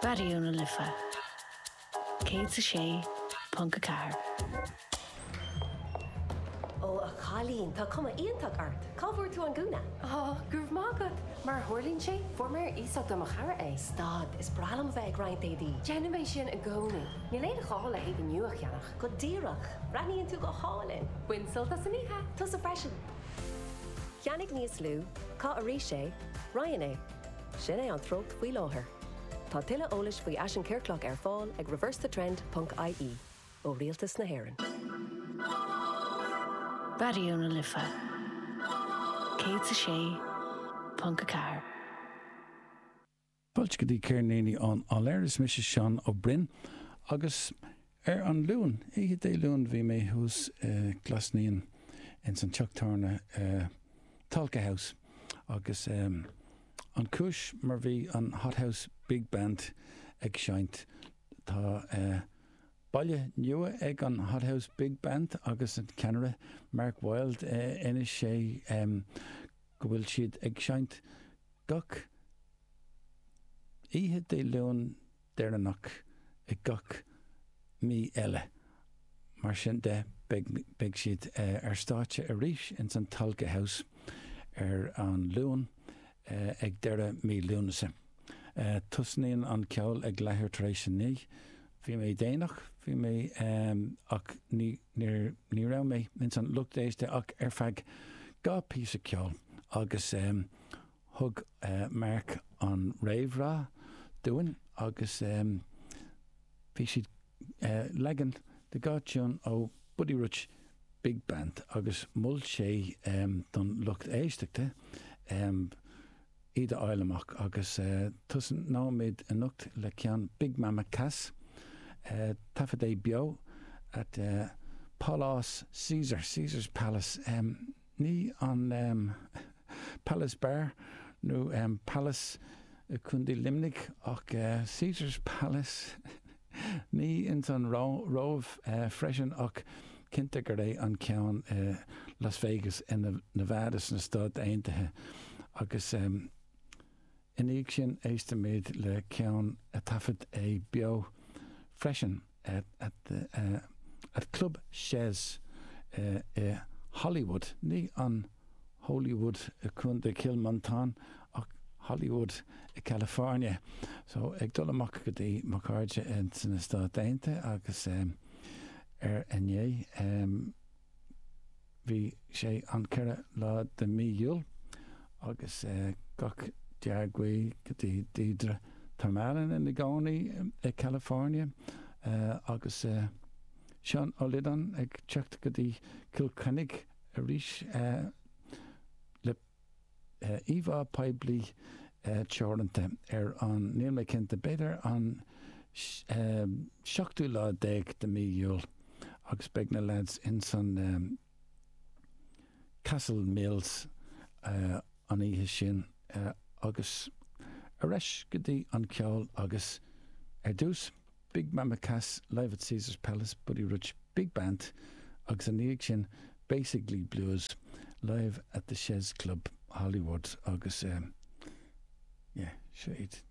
Raidió na Life 106.4. Ó a chailín, tá cuma iontach ort! Cá bhfuair tú an gúna? Ó, go raibh maith agat! Mar a tharlaíonn sé, fuair mé ar iasacht ó mo chara é. Stad, is breá liom a bheith ag roinnt éadaí. Déanaim é sin i gcónaí. Níl aon ghá le héadaí nua a cheannach. Go díreach! Breathnaíonn tú go hálainn! Bain sult as an oíche! Tusa freisin! Ceannaigh níos lú, Caith arís é, Roinn é. Sin é an treocht faoi láthair. Tá tuilleadh eolais faoi Fhaisean Ciorclach ar fáil ag reversethetrend ponc ie. ó Rialtas na hÉireann. Raidió na Life 106.4. Boilscití, ceirníní ón áiléar, is mise Seán Ó Broin agus. Ar an Luan, oíche Dé Luain bhí mé thuas i Glas Naíon ins an teach tábhairne Tolka House agus an cúis mar bhí an Hot House Big Band ag seinnt. Tá baile nua ag an Hot House Big Band agus an ceannaire Mark Wild d'inis sé go bhfuil siad ag seinnt gach oíche Dé Luain deireanach i gach mí eile. Mar sin de, beidh siad ar stáitse arís ins an Tolka House ar an Luan ag deireadh mí Lúnasa. Tosnaíonn an ceol ag leathuair tar éis a naoi. Bhí mé déanach, bhí mé, ach ní raibh mé ins an lucht éiste ach ar feadh dhá phíosa ceoil agus. Thug Mark an réamhrá dúinn agus bhí siad leagan de dhá thiúin ó Buddy Rich Big Band agus mhol sé don lucht éisteachta iad a fháil amach agus tosnóimid anocht le ceann Big Mama Cass, taifeadadh beo at Pálás Caesar, Caesar's Palace. Ní an Palace Bar nó Pailís i Contae Luimnigh ach Caesar's Palace. Ní ins an Róimh freisin ach cinnte gur é an ceann i Las Vegas i Nevada sna Stáit Aontaithe agus I ndiaidh sin éistfimid le ceann a taifead é beo freisin at Club Chez i Hollywood, ní an Holywood i Contae Chill Mhantáin ach Hollywood i California. So ag dul amach go dtí mo chairde sna Stáit Aontaithe agus ar a ndéigh, Bhí sé an ceithre lá de mí Iúil agus gach dea-ghuí go dtí Deirdre. Tá muid araon i gcónaí i California agus Seán Ó Liodáin ag teacht go dtí Cill Chainnigh arís le íomhá poiblí teoranta ar an níl mé cinnte b'fhéidir an seachtú lá déag de mí Iúil agus beidh na leaids ins an Castle Mills an oíche sin agus ar ais go dtí an ceol agus ar dtús Big Mama Cass live at Caesar's Palace Buddy Rich Big Band agus ina dhiaidh sin Basically Blues live at the Chez Club Hollywood agus yeah seo iad.